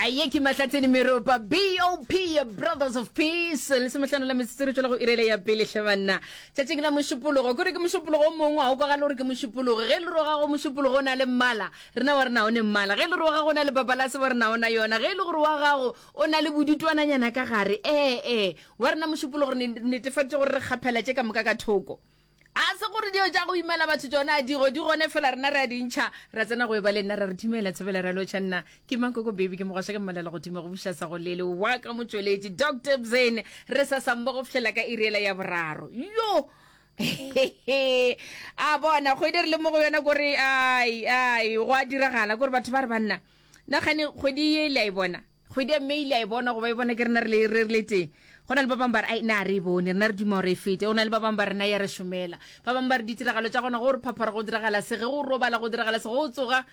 aye ke mahlatseni meropa bop brothers of peace le semetlhano la metsetsere tswela go irele ya pele hle banna tšatšing la mošupologo kore ke mošupologo o mongwe ga o kwagale gore ke mošupologo ge le roga go mošupologo o na le mmala rena wa rena o ne mmala ge le roga go na le papalase wa rena ona yona ge e le gore wa gago o na le bodutwananyana ka gare ee ee wa rena mošupologo re netefatse gore re kgaphela tše ka moka ka thoko a se gore dio tša go imela batho tsona digo di gone fela rena re a dintšha ra tsena go eba le nna ra re dumela tshebela ra lotšha nna ke mankoko baby ke mogwasha ke mmalela godimo go buša sa go lele wa ka motšweletši dr bzen re sa sambo go fihlela ka irela ya boraro yo a bona kgwedi re le mo go yona kore ai ai go a diragala kore batho ba re banna nagane kgwedi ye le a e bona Kgwedi ya May le a e bona go ba e bona ke rena re re le tee. Go na le ba bangwe ba re ai na re e bone rena re duma gore e fete. Go na le ba bangwe ba rena ya re šomela. Ba bangwe ba re ditiragalo tša gona go re phaphara go diragala se ge go robala go diragala se go tsoga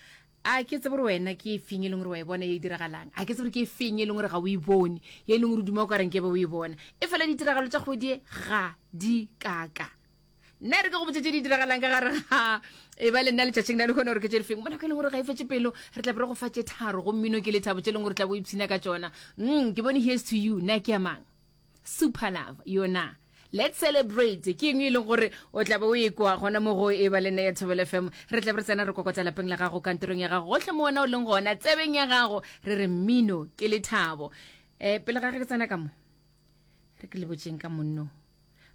a ke tsebe gore wena ke e feng e leng gore wa e bona ye e diragalang a ke tsebe gore ke e feng e leng gore ga o e bone ye e leng gore o duma o ka reng ke be o e bona e fela ditiragalo tša kgwedi e ga di kaka nna re ke go botse tse di diragalang ka gare ga e ba le nna letšatšing la le kgone gore ke tse difeng mo nako e leng gore ga e fetse pelo re tla be re go fa tse tharo go mmino ke lethabo tse e leng gore tla bo ipshina ka tsona mm ke bone here's to you nna ke amang super love yona let's celebrate ke eng e leng gore o tla be o e kwa gona mo go e ba le nna ya thobele fm re tla be re tsena re kokotsa lapeng la gago kantorong ya gago gotlhe mo wena o leng gona tsebeng ya gago re re mmino ke lethabo um pele ga ge ke tsena ka mo re ke le botseng ka monno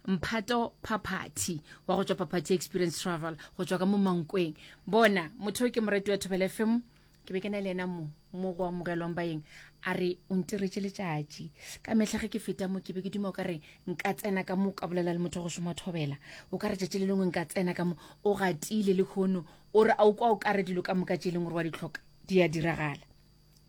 mphato phaphathi wa go tswa phaphathi experience travel go tswa ka mo mankweng bona motho ke morati wa thobele fm ke be ke na le ena mo mo go amogelwang baeng a re o ntiretse letšatši ka mehla ge ke feta mo ke be ke duma o ka re nka tsena ka mo ka bolela le motho go šoma thobela o ka re tšatši le lengwe nka tsena ka mo o gatile le kgono o re a o kwa o ka re dilo ka moka tše e leng gore wa di tlhoka di a diragala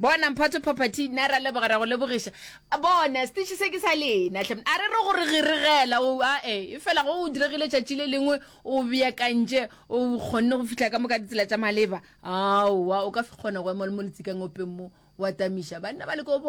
Bona, Mphato Phaphathi, nna ra leboga, ra go lebogiša. Bona, Setiši se ke sa lena, hle. A re re go re giregela, o, a e, efela go diregile letšatši le lengwe, o beakantše, o kgonne go fihla ka moka ditsela tša maleba. Aowa, o ka kgona go ema le mo letsikang openg mo, wa tamiša. Banna ba leka go boga.